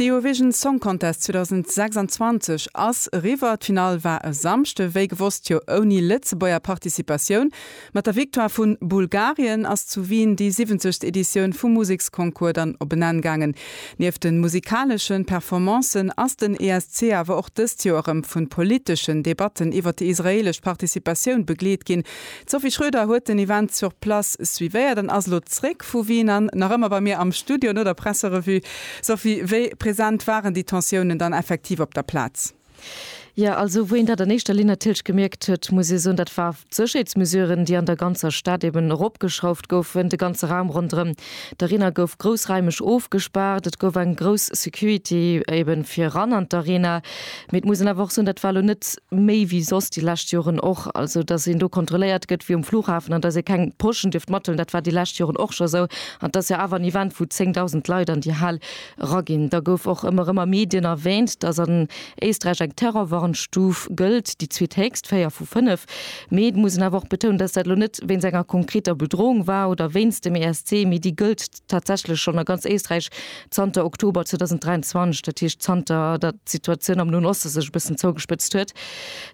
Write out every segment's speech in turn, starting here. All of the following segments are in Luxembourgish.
De Eurovision Song Contest 2026 ass eriwwer. D'Finall war e Samschde, wéi gewosst jo ouni Lëtzebuerger Participatioun. Mat der Victoire vu Bulgarien ass zu Wien déi 70. Editioun vum Museksconcours dann op en Enn gaangen. Nieft de musikaleschen Performancen ass den ESC awer och dëst Joer erëm vu politeschen Debatten iwwert déi israeelesch Participatioun begleet ginn. D'Sophie Schröder huet den Event sur place suivéiert an ass elo zréck vu Wien an nach ëmmer bei mir am Studio no der Presserevue. Sophie, wéi present waren déi Tensiounen dann effektiv op der Plaz? Jo, also wou een dat an éischter Linn natierlech gemierkt huet, muss ee soen, dat war d'Sécherheetsmesuren, déi an der ganzer Stad eben eropgeschrauft goufen. De ganze Raum ronderëm d'Arena gouf groussraimeg ofgespaart, et gouf eng grouss Security eben fir eran an d'Arena. Mee et muss een awer och soen, dat war elo net méi wéi soss déi lescht Joren och. Also, datt een do kontrolléiert gëtt wéi um Flughafen an datt ee keng Poschen dierft mathëllen, dat war déi lescht Joren och scho esou. An et ass jo awer en Event, wou 10.000 Leit an déi Hal eraginn. Da gouf och ëmmer erëm a Medien erwäänt, datt an Éisträich eng Terrorwarnstuf gëllt, déi zweethéchst, véier vu fënnef. Mee et muss een awer och betounen, datt dat elo net wéinst enger konkreter Bedroung war oder wéinst dem ESC, mee déi gëllt, tatsächlech schonn a ganz Éisträich zanter Oktober 2023, dat heescht zanter datt d'Situatioun am Noen Oste sech e bëssen zougespëtzt huet,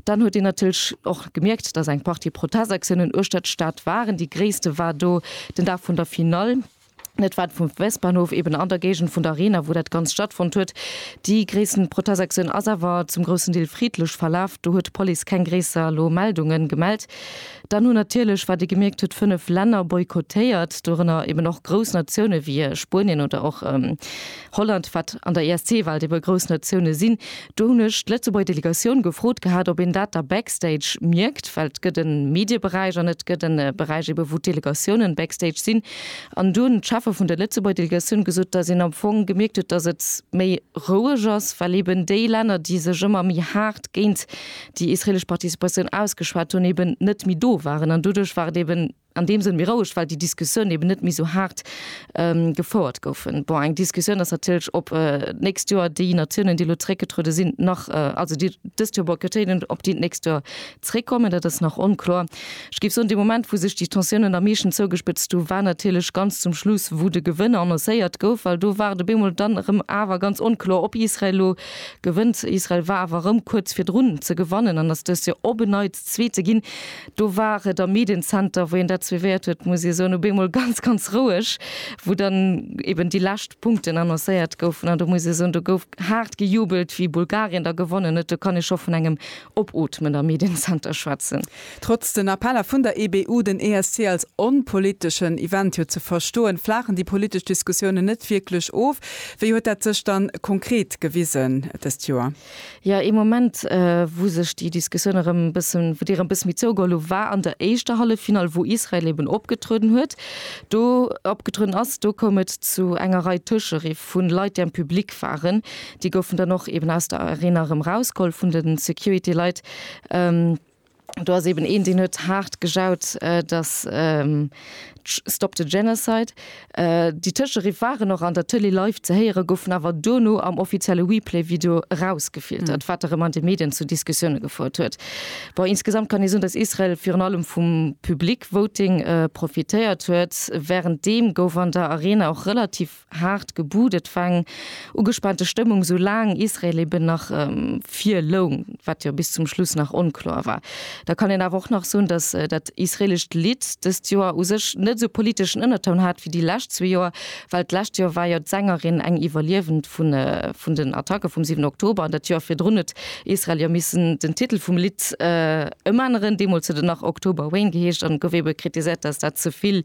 dann huet een natierlech och gemierkt, datt eng Partie Protestaktiounen uechter d'Stad waren. Déi gréisste war do den Dag vun der Finall. Dat war vum Westbahnhof eben an der Géigend vun der Arena, wou dat Ganzt stattfonnt huet. Déi gréissten Protestaktioun ass awer zum groussen Deel friddlech verlaf. Do huet d'Police keng gréisser elo Meldungen gemellt. Dann hunn natierlech, wat ee gemierkt huet, fënnef Länner boykottéiert, dorënner eben och grouss Natioune wéi Spuenien oder och Holland, wat an der ESC-Welt ebe grouss Natioune sinn. Do hunn ech d'Lëtzebuerger Delegatioun gefrot gehat, ob een dat da backstage mierkt, well et gëtt e Medieberäich an et gëtt e Beräich ebe wou d'Delegatiounen backstage sinn. An do hunn d'Cheffe vun der Lëtzebuerger Delegatioun gesot, datt een am Fong gemierkt huet, datt et méi roueg ass, well eben déi Länner, déi sech ëmmer méi haart géint déi israelesch Participatioun ausgeschwat hunn, eben net méi do waren. An doduerch war et eben an deem Sënn méi roueg, well déi Diskussiounen eben net méi esou haart gefouert goufen. Bon, eng Diskussioun ass natierlech, ob d'nächst Joer déi Natiounen, déi elo zeréckgetruede sinn, nach, also déi dëst Joer boykottéieren, ob déi d'nächst Joer zeréckkommen. Dat ass nach onkloer. Ech géif soen, dee Moment, wou sech déi Tensiounen am meeschten zougespëtzt hu war natierlech ganz zum Schluss, wou de Gewënner annoncéiert gouf, well do war et op eemol dann erëm awer ganz onkloer, ob Israel elo, Gewënnt Israel, war awer erëm kuerz virdrun ze gewannen an ass dëst Joer op en Neits Zweete ginn. Do war et am Mediencenter, wou een dat suivéiert huet, muss ee soen, op eemol ganz, ganz roueg, wou dann eben déi lescht Punkten annoncéiert goufen. An do muss ee soen, do gouf haart gejubelt, wéi Bulgarien da gewonnen huet. Do kann ee scho vun engem Opootmen am Mediencenter schwätzen. Trotz den Appeller vun der EBU, den ESC als onpoliteschen Event jo ze verstoen, flaachen déi politesch Diskussiounen net wierklech of. Wéi huet dat sech dann konkret gewisen dëst Joer? Jo, ee Moment, wou sech déi Diskussioun erëm e bëssen, wou déi erëm e bëssen méi zougeholl hu, war an der éischter Halleffinall, wou Israel eben opgetrueden huet, do opgetrueden ass. Do koum et zu enger Rei Tëscheriff vu Leit, déi am Public waren. Déi goufen dann och eben aus der Arena erëm erausgeholl vun de Security-Leit. Do ass eben een deen huet haart gejaut, datt Stop the Genocide. Déi Tëscheriff waren och an der Tëlee live ze héieren, goufen awer duerno am offizielle Replay-Video erausgefiltert, wat erëm an de Medien zu Diskussioune gefouert huet. Bon, insgesamt kann ee soen, datt Israel virun allem vum Public Voting profitéiert huet. Wärenddeem gouf an der Arena och relativ Haart gebut, et war eng ugespaante Stëmmung, sou laang Israel eben nach vir loung, wat jo bis zum Schluss nach onkloer war. Da kann een awer och nach soen, datt dat israelescht Lidd dëst Joer u sech net esou politeschen Ënnertoun hat wéi déi lescht zwee Joer, well d'lescht Joer war jo d'Sängerin eng Iwwerliewend vun den Attacke vum 7 Oktober an dat Joer virdrun huet Israel jo missen den Titel vum Lidd ëmänneren. Deemools huet et nach October Rain geheescht an et gouf ebe kritiséiert, datt dat ze vill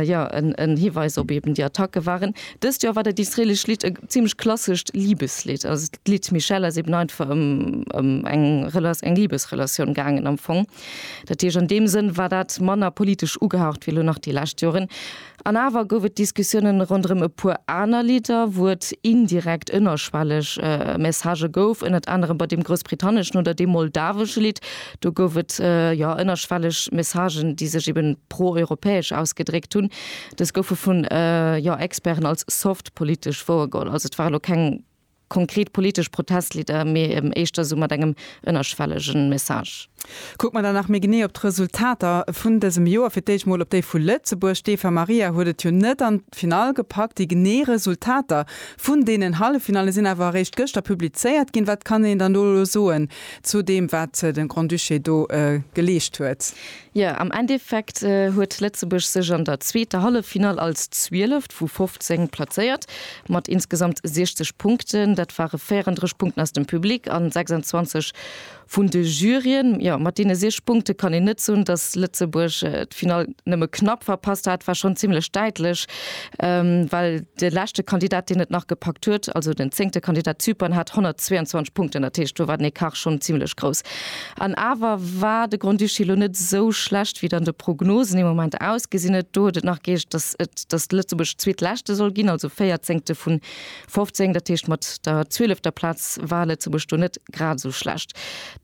ja, en Hiweis op eben déi Attacke waren. Dëst Joer war dat israeelescht Lidd e zimmlech klassescht Libeslidd. Also d'Lidd Michelle ass eben einfach ëm ëm eng Rela eng Libesrelatioun gaangen am Fong. Dat heescht, an deem Sënn war dat manner politesch ugehaucht wéi elo nach déi lescht Joren. An awer gouf et Diskussiounen ronderëm e puer aner Lidder, wou et indirekt ënnerschwelleg Messagë gouf, ënnert anerem bei deem groussbritanneschen oder deem moldawesche Lidd. Do gouf et jo ënnerschwelleg Messagen, déi sech eben pro-europäesch ausgedréckt hunn. Dës goufe vun jo Experten als soft politesch wouergeholl. Also et ware lo keng konkret politesch Protestlidder, mee eben éischter sou mat engem ënnerschwellege Message. Kucke mer da nach méi genee op d'Resultater vun dësem Joer, fir d'éischt mol op déi vu Lëtzebuerg. D'Eva Maria huet et jo net an d'Finall gepackt. Déi genee Resultater vun deenen Halleffinalle sinn awer eréischt gëschter publizéiert ginn. Wat kann een dann do elo soen? Zu deem, wat de Grand-Duché do geleescht huet. Jo, am Endeffekt huet Lëtzebuerg sech an der zweeter Halleffinall als Zwieleft vu 15 plazéiert, mat insgesamt 60 Punkten. Dat ware 34 Punkten aus dem Public an 26 vun de Juryen. Jo, mat deene 6 Punkte kann een net soen, dass Lëtzebuerg d'Finall nëmme knapp verpasst hat. War schonn zimmlech däitlech, Well de leschte Kandidat, deen et nach gepackt huet, also den zéngte Kandidat Zypern, hat 122 Punkten. Dat heescht, do war den Ecart schonn zimlech grouss. An awer war de Grand-Duché elo net esou schlecht, wéi et an de Prognosen im Moment ausgesinn huet. Do huet et nach geheescht, datt et datt Lëtzebuerg Zweetleschte soll ginn, also Véierzéngte vu 15. Dat heescht, mat der zwielefter Plaz war Lëtzebuerg do net grad esou schlecht.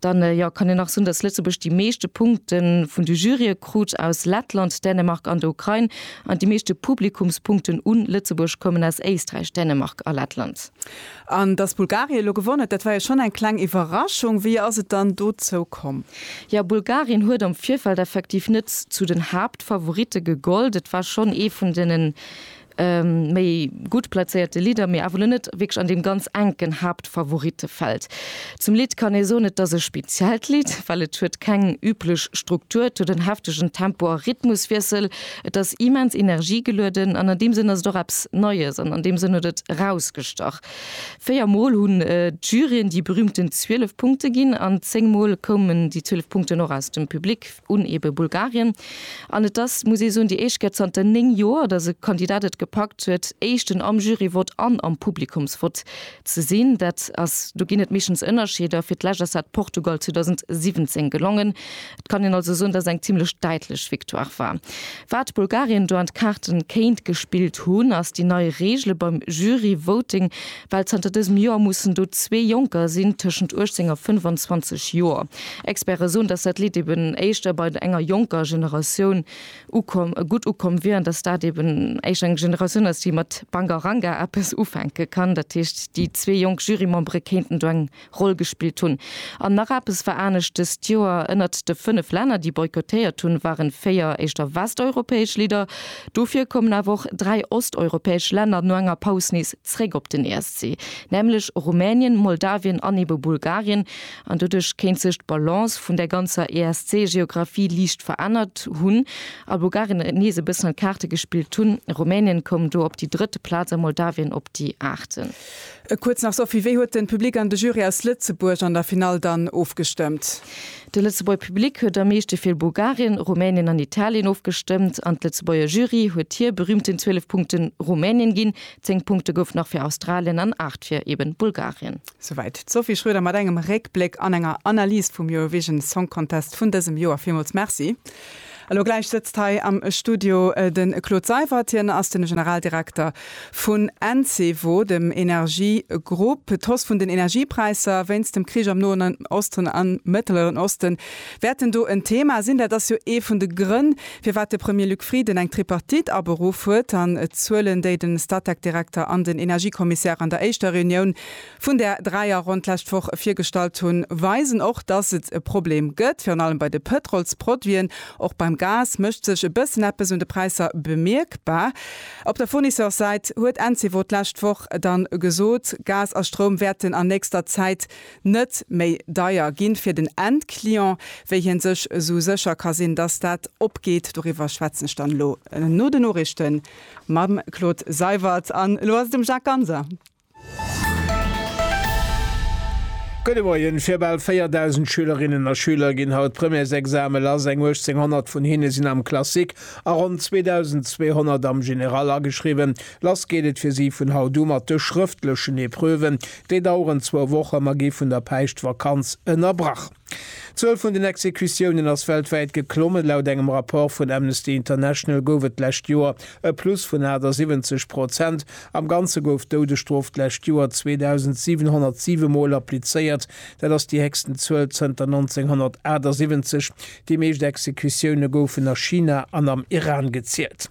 Dann, jo, kann een nach soen, dass Lëtzebuerg déi meeschte Punkte vun de Jurye krut aus Lettland, Dänemark an der Ukrain, an déi meeschte Publikumspunkten u Lëtzebuerg koumen aus Éisträich, Dänemark a Lettland. An dass Bulgarien elo gewonn huet, dat war jo schonn eng kleng Iwwerraschung. Wéi ass et dann dozou komm? Jo, Bulgarien huet am Virfeld effektiv net zu den Haaptfavoritte gegollt. Et war schonn ee vun deene méi gutt plazéierte Lidder, mee awer lo net wierklech an deem ganz enken Haaptfavorittefeld. Zum Lidd kann ee soen, et ass e speziellt Lidd, well et huet keng üblech Struktur, et huet en heftegen Tempo a Rhythmuswiessel, et ass immens energiegelueden an an deem Sënn ass et och eppes Neies an an deem Sënn huet et erausgestach. Véier Mol hunn d'Juryen déi berüümten 12 Punkte ginn an zéng Mol koumen déi 12 Punkten och aus dem Public. un ebe Bulgarien. An et ass, muss ee soen, déi éischt Kéier zanter 9 Joer, datt e Kandidat et gepackt huet, Éischten am Jury-Vott an am Publikumsvott ze sinn. Dat ass, do ginn et meeschtens Ënnerscheeder. Fir d'lescht ass dat Portugal 2017 gelongen. Et kann een also soen, datt et eng zimmlech däitlech Victoire war. Wat Bulgarien do an d'Kaarten kéint gespillt hunn, ass déi nei Reegele beim Jury-Voting. Well zanter dësem Joer mussen do zwee Jonker sinn tëschent 18 a 25 Joer. Experte soen, datt dat Lidd eben éischter bei enger jonker Generatioun ukomm, gutt ukomm wier an datt dat eben éischter eng Generatioun ass, déi mat Bangaranga eppes ufänke kann. Dat heescht, déi zwee jonk Jurymembere kéinten do eng Roll gespillt hunn. An nach eppes war anescht dëst Joer, Ënnert de fënnef Länner, déi boykottéiert hunn, waren véier éischter westeuropäesch Lidder. Dofir kommen awer och dräi osteuropäesch Länner no enger Paus nees zréck op den ESC, nämlech Rumänien, Moldawien an ebe Bulgarien. An doduerch kéint sech d'Balance vun der ganzer ESC-Geographie liicht verännert hunn a Bulgarien nees e bëssen an d'Kaarte gespillt hunn. Rumänien koum do op déi drëtt Plaz a Moldawien op déi aachte. E kuerz nach, Sophie, wéi huet den Public an de Jury aus Lëtzebuerg an der Finall dann ofgestëmmt? De Lëtzebuerg Public huet am meeschte fir Bulgarien, Rumänien an Italien ofgestëmmt an d'Lëtzebuerger Jury huet hier berühmten 12 Punkten Rumänien ginn, 10 Punkte goufen nach fir Australien an 8 fir eben Bulgarien. Souwäit d'Sophie Schroeder mat engem Réckbléck an enger Analys vum Eurovision Song Contest vun dësem Joer. Villmools Merci. Elo gläich sëtzt hei am Studio de Claude Seywert. Hien ass de Generaldirekter vun Encevo, dem Energiegrupp. D'Hausse vun den Energiepräisser wéinst dem Krich am Noen Osten a Mëtteleren Oste wäerten do en Thema sinn. Dat ass jo ee vun de Grënn, firwat de Premier Luc Frieden eng Tripartite aberuff huet. An d'Zuelen, déi de Statec-Direkter an den Energiekommissär an der éischter Reunioun vun där dräi a Ronn d'lescht Woch virgestallt hunn, weisen och, dass et e Problem gëtt, virun allem bei de Pëtrolsproduiten. Och beim Gas mécht sech e bëssen eppes un de Präisser bemierkbar. Op der Fournisseurssäit huet Encevo d'lescht Woch dann gesot, Gas a Stroum wäerten an nächster Zäit net méi deier ginn fir den Endclient. Wéi hien sech esou sécher ka sinn, dass dat opgeet, doriwwer schwätzen ech dann elo no den Noriichten mam Claude Seywert. An elo ass et dem Jacques Ganser. Gudde Moien, Fir bal 4.000 Schülerinnen a Schüler ginn haut d'Premièresexame lass. Eng 1.800 vun hinne sinn am Classique a ronn 2.200 am General ageschriwwen. Lass geet et fir si vun haut u mat de schrëftlechen Epreuven. Déi daueren zwou Wochen, ma gi vun der Päischtvakanz ënnerbrach. D'Zuel vun den Exekutiounen ass weltwäit geklommen. Laut engem Rapport vun Amnesty International gouf et d'lescht Joer e Plus vun 78 Prozent. Am Ganze gouf d'Doudesstrof d'lescht Joer 2.707 Mol applizéiert. Dat ass déi héchsten Zuel zënter 1978. Déi meescht Exekutioune goufen a China an am Iran gezielt.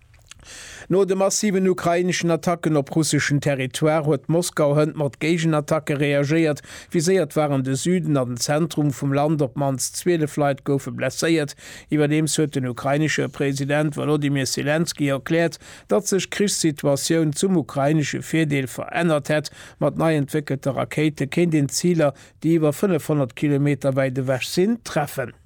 No de massiven ukraineschen Attacken op russeschen Territoire huet Moskau hënt mat Géigenattacke reagéiert. Viséiert waren de Süden an den Zentrum vum Land, op d'mannst 12 Leit goufe blesséiert. Iwwerdeems huet den ukrainesche President Wolodymyr Selenskyj erkläert, datt sech d'Krichssituatioun zum ukrainesche Virdeel verännert hätt. Mat nei entwéckelte Rakéite kéint een d'Ziler, déi iwwer 500 Kilometer wäit ewech sinn, treffen.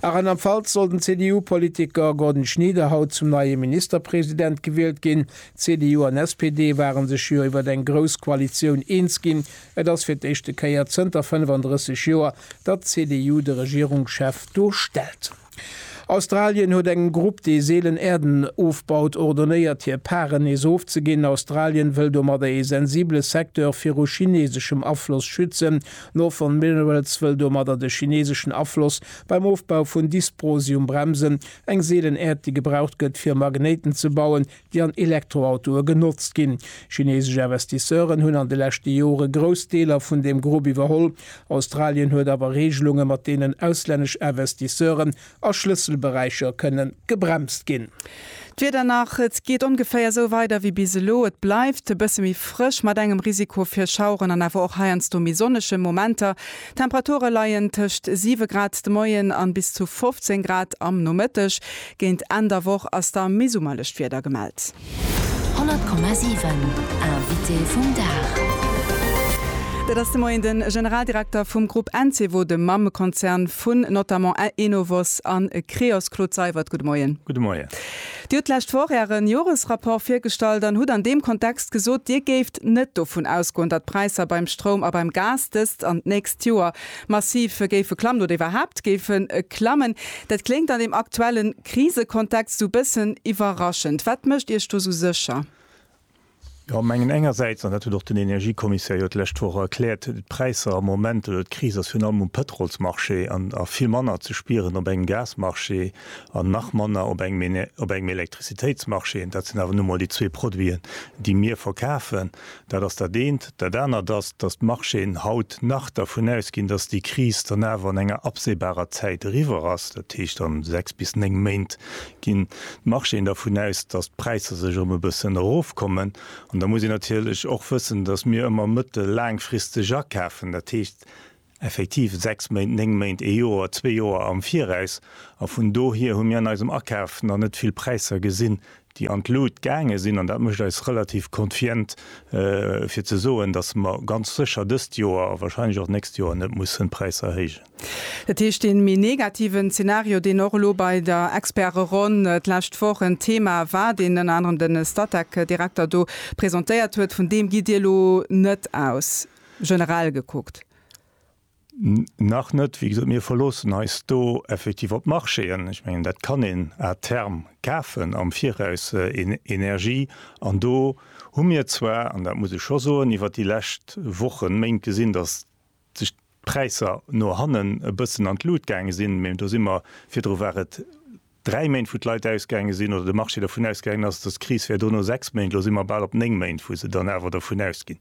A Rheinland-Pfalz soll den CDU-Politiker Gordon Schnieder haut zum neie Ministerpresident gewielt ginn. CDU an SPD ware sech jo iwwer eng grouss Koalitioun eens ginn. Et ass fir d'éischte Kéier zënter 35 Joer, datt d'CDU de Regierungschef do stellt. Australien huet engem Grupp, dee seelen Äerden ofbaut, ordonéiert hir Pare nees ofzeginn. Australien wëll domadder ee sensibele Secteur viru chineseschem Afloss schützen. Northern Minerals wëll domadder de chineseschen Afloss beim Ofbau vun Dysprosium bremsen, eng seelen Äerd déi gebraucht gëtt fir Magnéiten ze bauen, déi an Elektroautoe genotzt ginn. Chinesesch Investisseuren hunn an de leschte Jore grouss Deeler vun deem Grupp iwwerholl. Australien huet awer Reegelunge mat deenen auslännesch Investisseuren a Schlësselberäicher kënne gebremst ginn. D'Wieder nach, Et geet ongeféier esou weider wéi bis elo. Et bleift e bësse méi frësch mat engem Risiko fir Schaueren an awer och heiansdo méi sonnege Momenter. D'Temperature leien tëscht 7 Grad de Moien an bis zu 15 Grad am Nomëtteg. Géint Enn der Woch ass da méi summerlecht Wieder gemellt. 100,7 Invité vum Dag. Dat ass de Moien de Generaldirekter vum Grupp Encevo, dem Mammekonzern vun notamment Enovos a Creos, Claude Seywert. Gudde Moien. Gudde Moien. Dir hutt d'lescht Woch Äre Joresrapport virgestallt an hutt an deem Kontext gesot, Dir géift net dovun ausgoen, datt d'Präisser beim Stroum a beim Gas dëst an d'nächst Joer massiv géife klammen oder iwwerhaapt géife klammen. Dat kléngt an deem aktuelle Krisekontext sou bëssen iwwerraschend. Wat mécht Iech do sou sécher? Jo, mengen engersäits, an dat huet och den Energiekommissär jo d'lescht Woch erkläert, d'Präisser am Moment oder d'Kris ass virun allem um Pëtrolsmarché an a vill manner ze spieren op engem Gasmarché an nach manner op engem op engem Elektrizitéitsmarché. Dat sinn awer nu mol déi zwee Produiten, déi mir verkafen. Dat ass dat eent. Dat anert ass, dass d'Marchéen haut nach dervun ausginn, dass déi Kris dann awer an enger absehbarer Zäit eriwwer ass, dat heescht a sechs bis néng Méint ginn d'Marchéen dervun aus, dass d'Präisser sech erëm e bëssen erofkommen. An da muss een natierlech och wëssen, dass mir ëmmer mëttel-, laangfristeg akafen. Dat heescht, effektiv sechs Méint, néng Méint, ee Joer, zwee Joer am Viraus. A vun dohier hu mir an eisem Akaf nach net vill Präisser gesinn, déi an d'Lut gaange sinn. An dat mécht eis relativ konfient, fir ze soen, dass mer ganz sécher dëst Joer a wahrscheinlech och d'nächst Joer net mussen d'Präisser erhéijen. Dat heescht, dee méi negativen Zeenario, deen och elo bei der Experteronn d'lescht Woch en Thema war, deen ënner anerem de Statec-Direkter do presentéiert huet, vun deem gitt Dir elo net aus? generell gekuckt? Nach net. Wéi gesot, mir verloossen eis do effektiv op d'Marchéen. Ech mengen, dat kann een à terme kafen am Viraus, Energie. An do hu mir zwar, an dat muss ech scho soen, iwwert déi lescht Wochen, Méint gesinn, datt sech d'Präisser no hannen e bëssen an d'Lut gaange sinn. Mä do si mer, virdru war et dräi Méint, wou d'Leit ausgaange sinn, oder de Marché dervun ausgaangen ass, dass d'Kris wär do no sechs Méint, elo si mer bal op néng Méint, wou se dann awer dervun ausginn,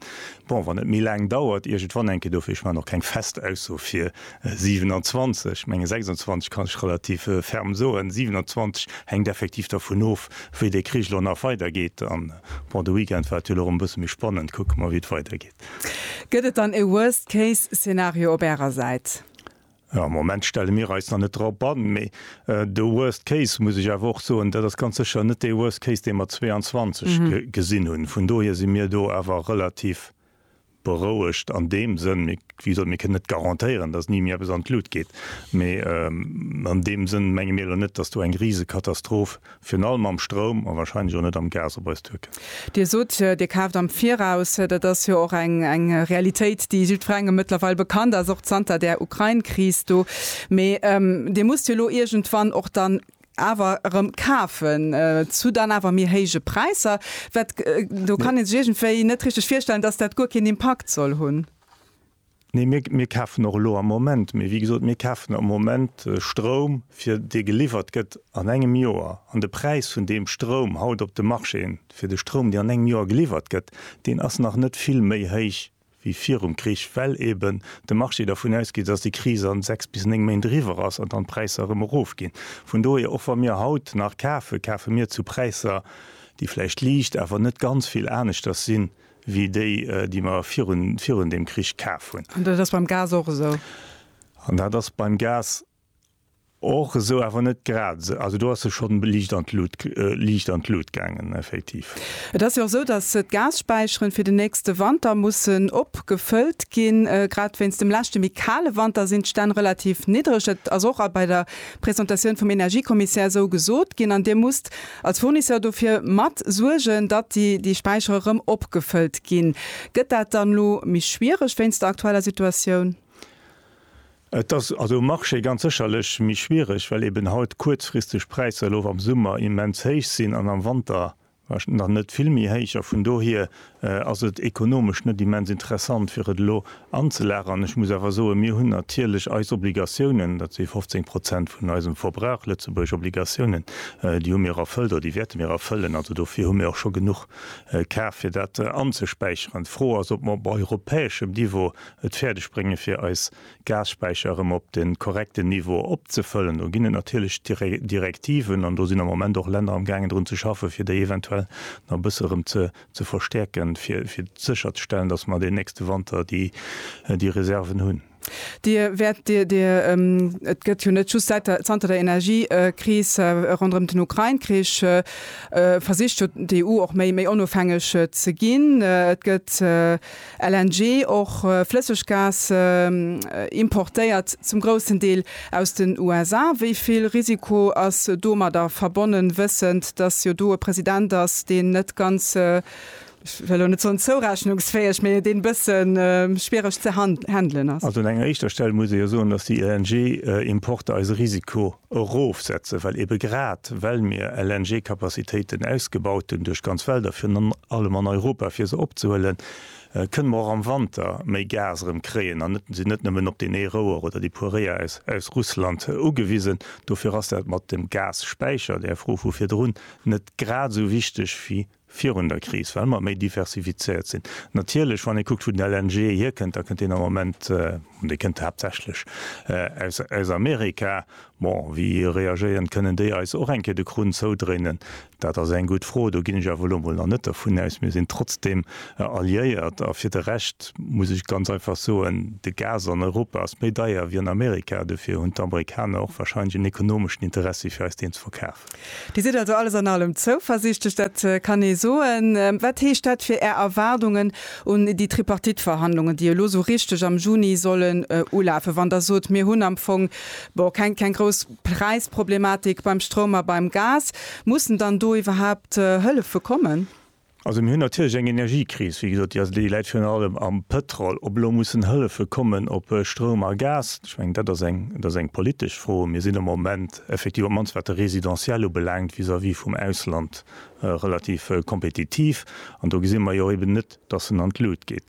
bon, wann et méi laang dauert, iergendwann enke dofir. Ech maachen och keng fest Ausso fir 27, ech menge 26 kann ech relativ ferm soen. 27 hänkt effektiv dervun of, wéi dee Krich elo nach weidergeet. An, bon, de Weekend war et jo elo erëm e bësse méi spannend. Kucke mer, wéi et weidergeet. Gëtt et dann e Worst-Case-Szenario op Ärer Säit? Am Moment stelle mir eis nach net drop an, mee de worst case, muss ech awer och soen, dat ass ganz sécher net dee worst case, dee mer 22 gesinn hunn. Vun dohier si mir do awer relativ berouegt an deem Sënn, wéi gesot, mir kënnen net garantéieren, dass ni méi eppes an d'Lut geet, mee an deem Sënn menge mir elo net, dass do eng Risekatastroph Virun allem mam Stroum a wahrscheinlech och net am Gas op eis Türken. Dir sot, Dir kaaft am Viraus. Dat ass jo och eng Realitéit, déi jiddwerengem mëttlerweil bekannt ass, och zanter där Ukrain-Kris do. Mee Dir musst jo elo iergendwann och dann awer erëm kafen, zu dann awer méi héije Präisser. Wat, do kann ee sech iergendwéi net richteg virstellen, dass dat guer keen Impakt soll hunn. Nee, mir, mir kafen och elo am Moment, mee wéi gesot, mir kafen am Moment Stroum, fir dee geliwwert gëtt an engem Joer. An de Präis vun deem Stroum haut op de Marchéen, fir de Stroum, dee an engem Joer geliwwert gëtt, deen ass nach net vill méi héich wéi virum Krich, well eeben de Marché dervun ausgeet, dass déi Kris a sechs bis néng Méint eriwwer ass an dann d'Präisser erëm erofginn. Vun dohier, och wa mir haut nach kafen, kafe mir zu Präisser, déi vläicht liicht, awer net ganz vill aneschters sinn, wéi déi, déi mer virun, virun deem Krich kaf hunn. An dat ass beim Gas och esou? An dat ass beim Gas och esou, awer net grad esou. Also do ass se schonn liicht an d'Lut, liicht an d'Lut gaangen, effektiv. Et ass jo och esou, datt d'Gasspeicheren fir den nächste Wanter mussen opgefëllt ginn. Grad wéinst dem leschte méi kale Wanter sinn d'Stänn relativ niddereg. Dat ass och a bei der Presentatioun vum Energiekommissär esou gesot ginn. An Dir musst Als Fournisseur dofir mat suergen, datt déi déi Späichere rëm opgefëllt ginn. Gëtt dat dann elo méi schwiereg wéinst der aktueller Situatioun? Et ass also um Marché ganz sécherlech méi schwiereg, well eben haut kuerzfristeg Präisser elo am Summer immens héich sinn an am Wanter nach net vill méi héich a vun dohier ass et ekonomesch net immens interessant fir et elo anzelageren. Ech muss awer soen, mir hunn natierlech eis Obligatiounen, dat si 15 Prozent vun eisem Verbrauch, lëtzebuergesch Obligatiounen, déi hu mir erfëllt oder déi wäerte mir erfëllen. Also dofir hu mir och scho genuch kaf fir dat anzespäicheren. D'Fro ass, ob mer op europäeschem Niveau et fäerdeg brénge fir eis Gasspäicher erëm op de korrekten Niveau opzefëllen. Do ginn et natierlech Direktiven an do sinn am Moment och Länner amgaangen drun ze schaffen, fir déi eventuell nach e bësse erëm ze ze verstäerken, fir sécher ze stellen, dass mer den nächste Wanter déi Reserven hunn. Dir wäert Dir, Dir, et gëtt jo net just säit der, zanter der Energiekris ronderëm den Ukrain-Krich, versicht jo d'EU och méi, méi onofhängeg ze ginn. Et gëtt. LNG, och Flësseggas, importéiert zum groussen Deel aus den USA. Wéi vill Risiko ass domadder verbonnen, wëssend, datt jo do e President ass, deen net ganz, ech wëll elo net soen zourechnungsfäeg, mee deen e bësse schwiereg ze handelen ass? Also un enger éischter Stell muss ee jo soen, datt déi LNG-Importer eis e Risiko Erofsetze, well ebe grad well mir LNG-Capacitéiten ausgebaut hunn duerch d'ganz Welt a virun allem an Europa, fir se opzehuelen, kënne mer och am Wanter méi Gas erëm kréien an sinn net nëmmen op deen ee Rouer oder déi puer Réier aus Russland ugewisen. Dofir ass dat mat dem Gasspeicher, där Fro vu virdrun, net grad esou wichteg wéi virun der Kris, well mer méi diversifizéiert sinn. Natierlech, wann ee kuckt, wou den LNG hierkënnt, da kënnt deen am Moment, an dee kënnt haaptsächlech aus Amerika. Bon, wéi reagéieren? Kënnen déi eis och eng Kéier de Krunn zoudréinen? Dat ass eng gutt Fro. Do ginn ech awer elo mol nach net dervun aus. Mir sinn trotzdeem alliéiert. A fir de Rescht muss ech ganz einfach soen, De Gas an Europa ass méi deier wéi an Amerika. Dofir hunn d'Amerikaner och warscheinlech en ekonomeschen Interessi fir eis deen ze verkafen. Dir sidd also alles an allem zouversiichtlech, dat kann ee soen. Wat heescht dat fir Är Erwaardungen un déi Tripartite-Verhandlungen, déi elo esou richteg am Juni sollen ulafen, wann Der sot, mir hunn am Fong, bon, keng grouss Präisproblematik beim Stroum a beim Gas? Mussen dann do iwwerhaapt Hëllefe kommen? Also mir hunn natierlech eng Energiekris, wéi gesot, déi ass, déi läit virun allem am Pétrol. Ob elo mussen Hëllefe kommen op Stroum a Gas, ech mengen, dat ass eng, dat ass eng politesch Fro. Mir sinn am Moment effektiv, op d'mannst wat de Résidentiel ubelaangt, vis-à-vis vum Ausland relativ kompetitiv. An do gesi mer jo eben net, dass en an d'Lut geet.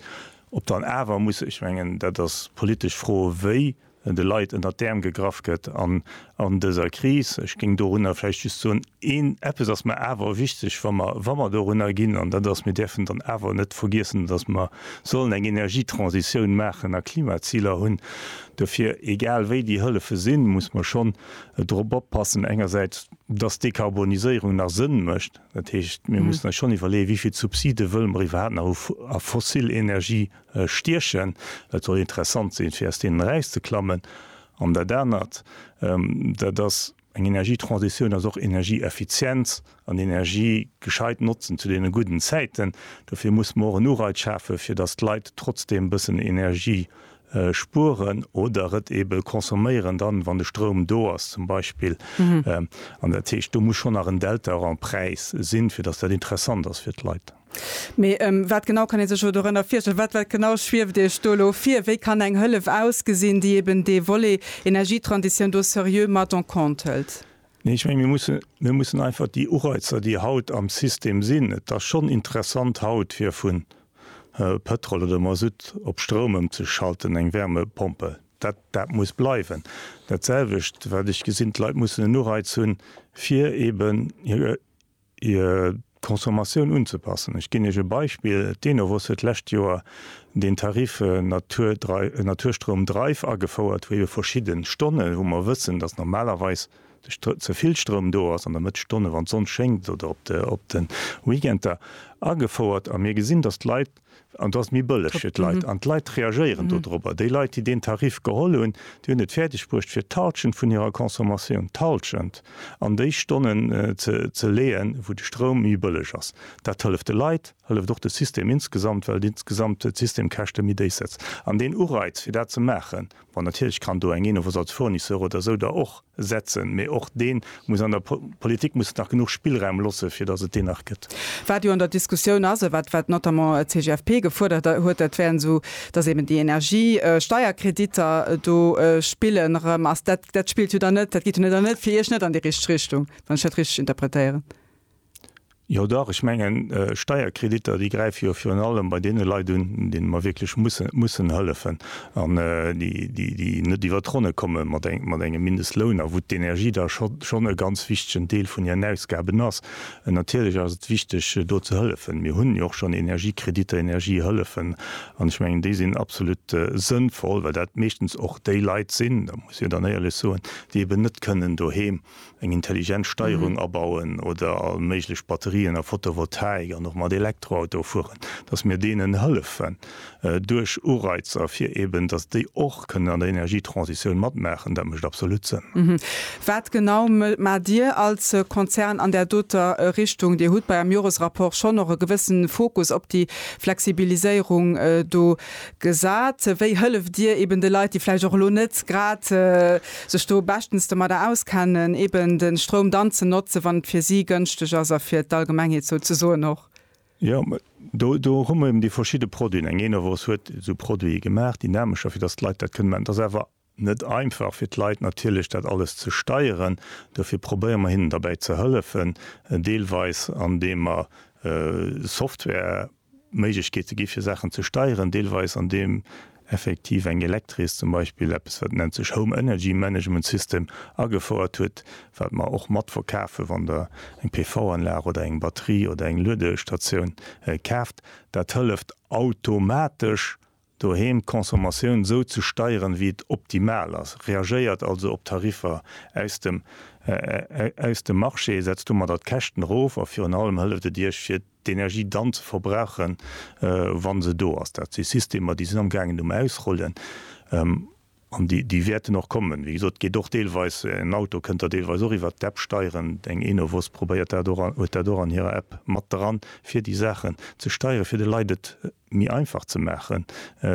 Ob dann awer muss, ech mengen, dat ass d'politesch Fro, wéi de Leit ënnert d'Äerm gegraff gëtt an an dëser Kris. Ech géing dorunner vläicht just soen, een, eppes ass mer awer wichteg, wa mer, wa mer dorunner ginn, an dat ass, mir däerfen dann awer net vergiessen, datt mer sollen eng Energietransitioun maachen a Klimaziler hunn. Dofir, egal wéi déi Hëllefe sinn, muss mer schonn drop oppassen, engersäits, datt d'Dekarboniséierung nach Sënn mécht. Dat heescht, mir mussen eis schonn iwwerleeën, wéi vill Subside wëlle mer iwwerhaapt nach hu a fossil Energien stiechen, dat soll interessant sinn, fir aus deenen erauszeklammen, an dat anert, dat ass eng Energietransitioun, ass och Energieeffizienz an Energie gescheit notzen zu deene gudden Zäiten. Dofir muss mer och en Ureiz schafen, fir datt d'Leit trotzdeem e bëssen Energie spueren oder et ebe consomméieren dann, wann de Stroum do ass zum Beispill. An dat heescht, do muss schonn nach en Delta och am Präis sinn, fir datt dat interessant ass fir d'Leit. Mee wat genau kann ee sech elo dorënner virstellen? Wat wat genau schwieft Iech do elo vir? Wéi kann eng Hëllef ausgesinn, déi eben dee Volet Energietransitioun do seriö mat en compte hëlt? Nee, ech menge mir musse, mir mussen einfach déi Ureizer, déi haut am System sinn, et ass schonn interessant haut fir vu Pétrol oder Masutt op Stroum ëmzeschalten, eng Wärmepompe, dat dat muss bleiwen. Dat selwecht wat ech gesinn, d'Leit mussen en Ureiz hunn, fir eben hir, hir Consommatioun unzepassen. Ech ginn Iech e Beispill, d'Enovos huet d'lescht Joer deen Tarif Naturstroum Drive agefouert, wou ebe verschidde Stonne wou mer wëssen, datt normalerweis ze vill Stroum do ass an der Mëtt Stonne wann d'Sonn schéngt oder op de Weekender agefouert a mir gesinn, datt d'Leit, An et ass méi bëlleg fir d'Leit. An d'Leit reagéieren dodrobber. Déi Leit, déi deen Tarif geholl hunn, déi hunn et fäerdeg bruecht, fir d'Halschent vun hirer Consommatioun, d'Halschent, an déi Stonnen ze leeën, wou de Stroum méi bëlleg ass. Dat hëlleft de Leit, hëlleft och de System insgesamt, well insgesamt d'Systemkäschte méi déif setzt. An deen Ureiz, fir dat ze maachen, Bon, natierlech kann do eng Innov als Fournisseur oder esou da och setzen, mee och dee muss an der Politik muss et nach genuch Spillraum losse fir datt et deen nach gëtt. Wat jo an der Diskussioun ass, wat wat notamment d'CGFP gefuerdert huet, dat wären esou, datt eeben déi Energiesteierkreditter do spillen erëm. Ass dat dat spillt jo dann net, dat geet jo net an net fir Iech net an déi richteg Richtung, wann ech dat richteg interpretéieren? Jo dach, ech mengen, Steierkreditter, déi gräife jo virun allem bei deene Leit un, deene mer wierklech mussen hëllefen an déi net iwwer d'Ronne komme mat engem Mindestloun a wou d'Energie da schonn e ganz wichtegen Deel vun hiren Ausgaben ass. Natierlech ass et wichteg, do ze hëllefen. Mir hunn jo och schonn Energiekreditter, Energiehëllefen an ech mengen, déi sinn absolut sënnvoll, well dat meeschtens och déi Leit sinn, dat muss ee jo dann éierlech soen, déi eben net kënnen doheem eng intelligent Steierung abauen oder all méiglech Batterien a Photovoltaik an och mat Elektroautoe fueren, dass mir deenen hëllefen duerch Ureizer, fir eben dass déi och kënnen an der Energietransitioun matmaachen, dat mécht absolut Sënn. Wat genau maacht Dir als Konzern an där doter Richtung? Dir hutt bei Äerem Joresrapport schonn och e gewësse Fokus op déi Flexibiliséierung do Gesat, wéi hëlleft Dir eben de Leit, déi vläicht och elo net grad sech do beschtens domadder auskennen, eben de Stroum dann ze notzen, wann et fir si gënschteg ass a fir d'Allgemengheet souzesoen och? Jo, do, do hu mer eben déi verschidde Produiten. Eng Enovos huet esou Produite gemaach, dynamescher, fir datt d'Leit dat kënnen man. Et ass awer Net einfach fir d'Leit natierlech dat alles ze steieren. Dofir probéiere mer hinnen derbäi ze hëllefen, deelweis an deem mer Software Méiglechkeete gi fir Saachen ze steieren, deelweis an deem effektiv eng Elektris zum Beispill eppes wat nennt sech Home Energy Management System agefouert huet, wat mer och mat verkafen, wann der eng PV Anlag oder eng Batterie oder eng Luedestatioun kaaft. Dat hëlleft automatesch doheem d'Consommatioun sou ze steieren, wéi et optimal ass, reagéiert also op d'Tariffer aus dem aus dem Marché, setzt domadder d'Käschten erof a virun allem hëlleft et Iech, fir d'Energie dann ze verbrauchen, wa se do ass. Dat si Systemer, déi sinn amgaangen um Ausrollen. An déi wäerten och kommen. Wéi gesot, et geet och deelweis, en Auto kënnt der deelweis och iwwert d'App steieren. Eng Enovos probéiert dat och an huet dat och an hirer App mat dran, fir déi Saachen ze steieren, fir de Leit et méi einfach ze maachen,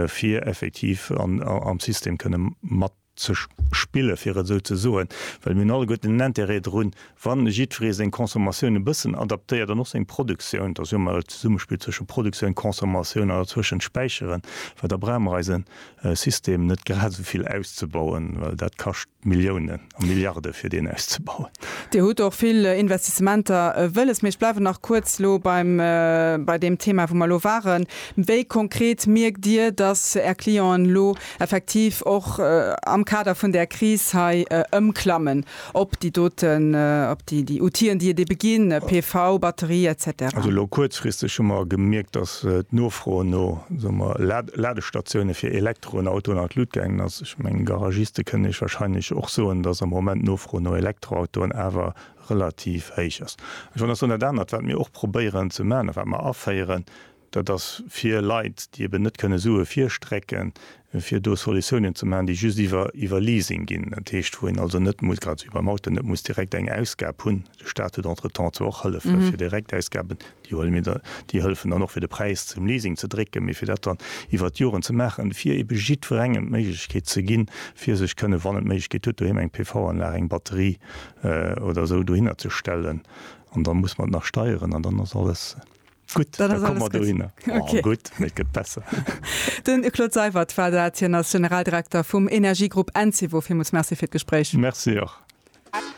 fir effektiv am System kënne mat ze spillen, fir et esou ze soen. Well mir hunn alleguerten en Interêt drun, wa jiddweree seng Consommatioun e bëssen adaptéiert an och seng Produktioun. Et ass jo ëmmer e Zesummespill zwësche Produktioun, Consommatioun an dozwëschen d'Späicheren, well da brauche mer eise e System net grad esou vill auszebauen, well dat kascht Milliounen a Milliarde fir deen auszebauen. Dir hutt och vill Investissementer wëlles, mee ech bleiwen nach kuerz elo beim bei deem Thema wou mer elo waren. Wéi konkret mierkt Dir, datt Är Clienten elo effektiv och am Kader vun där Kris hei ëmklammen? Op déi doten, op déi, déi Outien, déi et ebe ginn, PV, Batterie et cetera. Also elo kuerzfristeg hu mer gemierkt, dass d'Nofro no, soe mer, Ladestatiounen fir Elektroen, Autoen an d'Lut gaangen ass. Ech mengen, Garagiste kënnen Iech wahrscheinlech och soen, dass am Moment d'Nofro no Elektroautoen awer relativ héich ass. Ech wollt nach soen, dat anert, wat mir och probéieren ze maachen a wat mer aféieren, Dat ass fir Leit, déi eben net kënne Sue virstrecken, fir do Solutiounen ze maachen, déi just iwwer iwwer Leasing ginn. Dat heescht, wou een also net muss, grad esou beim Auto, net muss direkt eng Ausgab hunn. De Staat huet entretemps zwar och Hëllefe fir Direktausgaben, déi huele mir dann, déi hëllefen dann och fir de Präis zum Leasing ze drécken, mee fir dat dann iwwert d'Joren ze maachen, fir ebe jiddwerengem d'Méiglechkeet ze ginn, fir sech kënne, wann en d'Méiglechkeet huet, doheem eng PV-Anlag, eng Batterie oder esou dohinner ze stellen. An da muss mer et nach steieren an dann ass alles. Gutt, da komme mer dohinner. Oh, gutt, mee et gëtt besser. De Claude Seywert war dat. Hien ass Generaldirekter vum Energiegrupp Encevo. Villmools Merci fir d'Gespréich. Merci och.